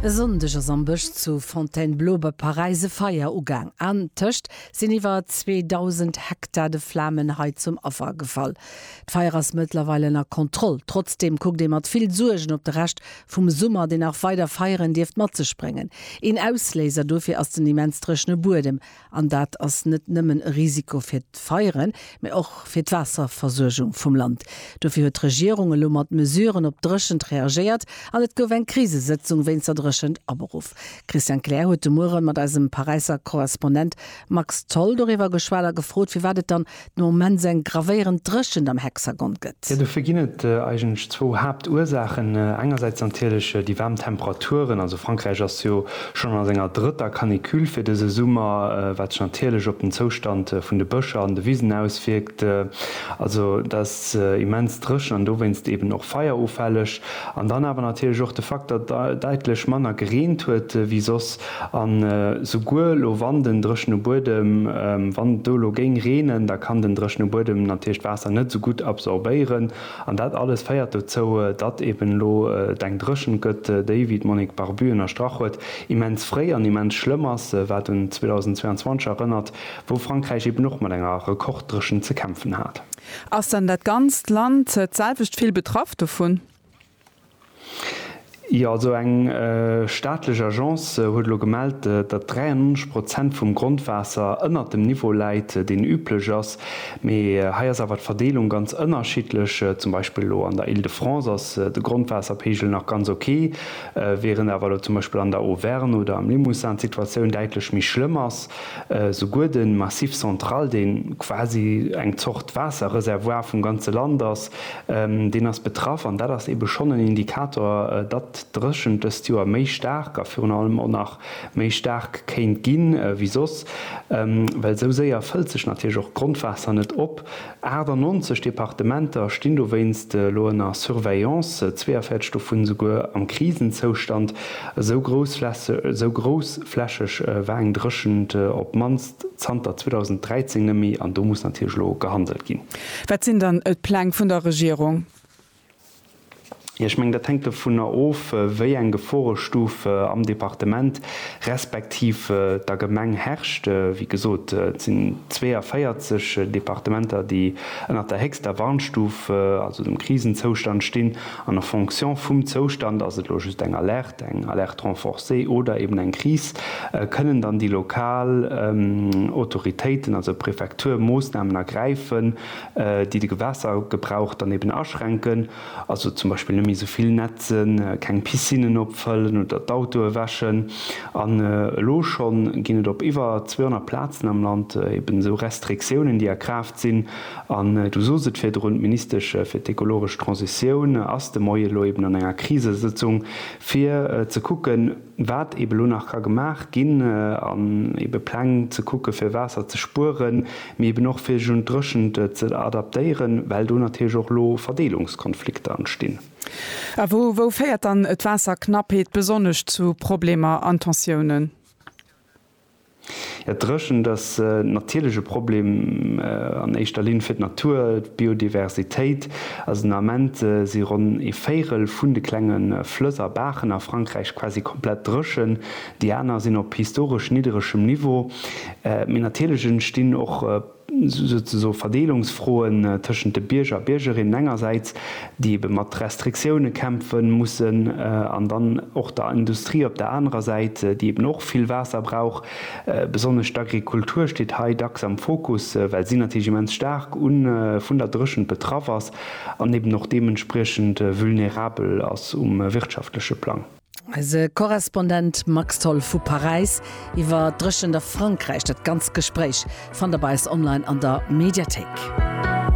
E Sonndeg ass am Bësch zu Fontainebleau bei Paräis e Feier ugaang. Antëscht sinn iwwer 2.000 Hektar de Flamen hei zum Affer gefall. D'Feier ass mëttlerweil ënner Kontroll. Trotzdeem kuckt ee mat vill Suergen op de Rescht vum Summer, deen nach weider Feieren dierft mat sech bréngen. Een Ausléiser dofir ass den immens dréchene Buedem. An dat ass net nëmmen e Risiko fir d'Feieren, mä och fir d'Waasserversuergung vum Land. Dofir huet d'Regierung elo mat Mesuren op d'Dréchent reagéiert an et gouf eng Krisesëtzung wéinst der Dréchent aberuff. Christian Kleer huet de Muere mat eisem Paräisser Korrespondent Max Tholl doriwwer geschwat a gefrot, firwat et dann no Mens eng gravéierend Dréchent am Hexagon gëtt. Jo, dofir ginn et eigentlech zwou Haaptursaachen. Engersäits natierlech déi waarm Temperaturen, also Frankräich ass jo schonn a senger drëtter Canicule fir dëse Summer, wat sech natierlech op den Zoustand vun de Bëscher an de Wisen auswierkt. Also dat ass immens dréchen an dowéinst eeben och feierufälleg. An dann awer natierlech och de Fakt, datt daitlech manner gereent huet wéi soss. An souguer lo wann den dréchene Buedem, wann et do elo géing reenen, da kann den dréchene Buedem natierlech d'Waasser net esou gutt absorbéieren. An dat alles féiert dozou, datt eben elo et eng Dréchent gëtt, déi, wéi d'Monique Barbu ënnerstrach huet, immens fréi an immens schlëmm ass, wat un 2022 erënnert, wou Frankräich eben och mat enger Rekorddréchent ze kämpfen hat. Ass dann dat ganzt Land d'selwecht vill betraff dovun? Jo, also eng staatlech Agence huet elo gemellt, datt 93 Prozent vum Grondwaasser ënnert dem Niveau läit, deen üblech ass. Mee hei ass awer d'Verdeelung ganz ënnerschiddlech. Zum Beispill elo an der Île de France ass de Grondwaasserpeegel nach ganz ok, während awer elo zum Beispill an der Auvergne oder am Limousin d'Situatioun däitlech méi schlëmm ass. Souguer de Massif central, dee quasi eng Zort Waasserreservoir vum ganze Land ass, Deen ass betraff an dat ass eebe schonn en Indikator, datt d'Dréchent dëst Joer méi staark a virun allem och nach méi staark kéint gi wéi soss, well esou séier fëllt sech natierlech och d'Grondwaasser net op. 98 Departementer stinn dowéinst elo ënner Surveillance, 42 dovun esouguer am Krisenzoustand, esou groussflächeg war eng Dréchent op d'mannst. zanter 2013 net méi an do muss natierlech elo gehandelt ginn. Wat sinn dann d'Pläng vun der Regierung? Jo, ech mengen, dat hänkt dovunner of, wéi eng Geforestuf am Departement respektiv der Gemeng herrscht. Wéi gesot, et sinn 42 Departementer, déi ënnert der héchster Warnstuf, also dem Krisenzoustand stinn. An en fonction vum Zoustand, ass et elo just eng Alerte, eng Alerte renforcée oder eben eng Kris, kënnen dann déi lokal Autoritéiten, also d'Prefektur, Moossnamen ergräifen, déi de Gewässergebrauch dann eben aschränken, also zum Beispill net méi esou vill netzen, keng Piscinnen opfëllen oder d'Autoe wäschen. An elo schonn ginn et op iwwer 200 Plazen am Land eben esou Restriktiounen, déi a Kraaft. Sinn, an Du sos et virdrun, d'Ministesch fir d'ekologesch Transitioun ass de Moie elo eben an enger Krisesëtzung, fir ze kucken, wat eben elo nach ka gemaach ginn, an ebe Pläng ze kucken, fir Waasser ze spueren, mee eben och fir sech un d'Dréchent ze adaptéieren, well do natierlech och elo Verdeelungskonflikter entstinn. A wou, wou féiert dann d'Waasserknappheet besonnesch zu Problemer an Tensiounen? D'Dréchent ass natierlech e Problem an éischter Linn fir d'Natur, d'Biodiversitéit. Also den Ament si ronn ee Véirel vun de klenge Flëss a Baachen a Frankräich quasi komplett dréchen, déi aner sinn op historesch nidderegem Niveau. Mee natierlech entstinn och souzesoe Verdeelungsfroen tëschent de Bierger a Biergerinnen engersäits, déi ebe mat Restriktioune kämpfe mussen, an dann och der Industrie op der anerer Säit, déi eben och vill Waasser brauch. Besonnesch d'Agrikultur steet hei dacks am Fokus, well si natierlech immens staark vun der Dréchent betraff ass an eben och deementspriechend vulnerabel ass um wirtschaftleche Plang. Eise Korrespondent Max Tholl vu Paräis iwwer d'Dréchent a Frankräich. Dat ganzt Gespréich fannt der bei eis online an der Mediathéik.